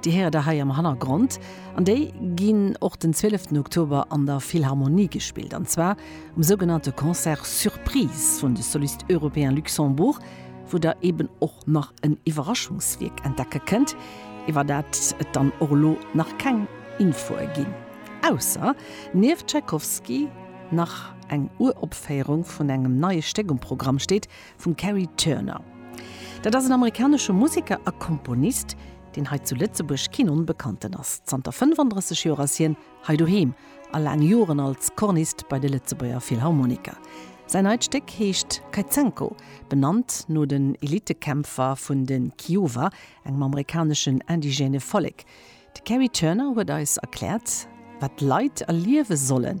Déi héiert der hei am Hannergrond an déi ginn och den 12 Oktober an der Philharmonie gespillt an zwar um sougenannte Concert Surprise vun de Solistes Européens Luxembourg, wou der eben och nach en Iwwerraschungswierk entdecke kënnt, iwwer dat et dann och elo nach keng Infoe ginn, ausser nieft Tschaikowski nach eng Uropféierung vun engem neie Stéck um Programm steet vum Kerry Turner. Dat ass en amerikanesche Museker a Komponist, deen hei zu Lëtzebuerg keen Onbekannten ass. Zanter 35 Joer ass hien hei doheem a laang Joren als Cornist bei de Lëtzebuerger Philharmoniker. Säin neit Stéck heescht Kaizenko, benannt no den Elitekämpfer vun de Kiowa, engem amerikaneschen indigène Vollek. De Kerry Turner huet eis erkläert, wat d'Leit erliewe sollen,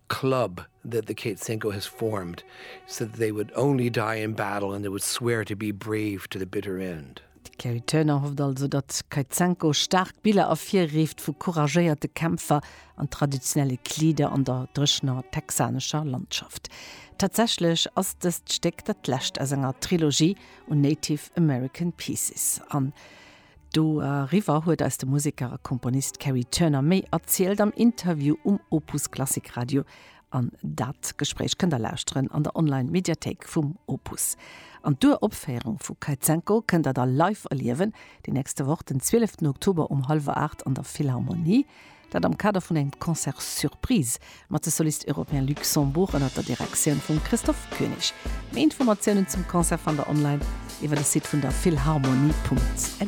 club that the Kate Cinco has formed so that they would only die in battle and they would swear to be brave to the bitter end. D'Kerry Turner hofft also, datt Kate Cinco staark Biller ervirrift vu couragéierte Kämpfer an traditionelle Kleeder an der dréchener texanescher Landschaft. Tatsächlech ass dëst Stéck dat lescht aus enger Trilogie un Native American Pieces an. Do eriwwer huet eis de Museker a Komponist Kerry Turner méi erzielt am Interview um Opus Klassik Radio. An dat Gespréich kënnt der lauschteren an der Online Mediathéik vum Opus. An d'Uropféierung vu Kaizenko kënnt der da live erliewen déi nächste Woch den 12 ten Oktober um hallwer 8 an der Philharmonie. Dat am Kader vun engem Concert Surprise mat de Solistes Européens Luxembourg ënnert der Direktioun vum Christophe König. Méi Informatiounen zum Concert fannt der online iwwer de Site vun der Philharmonie.lu.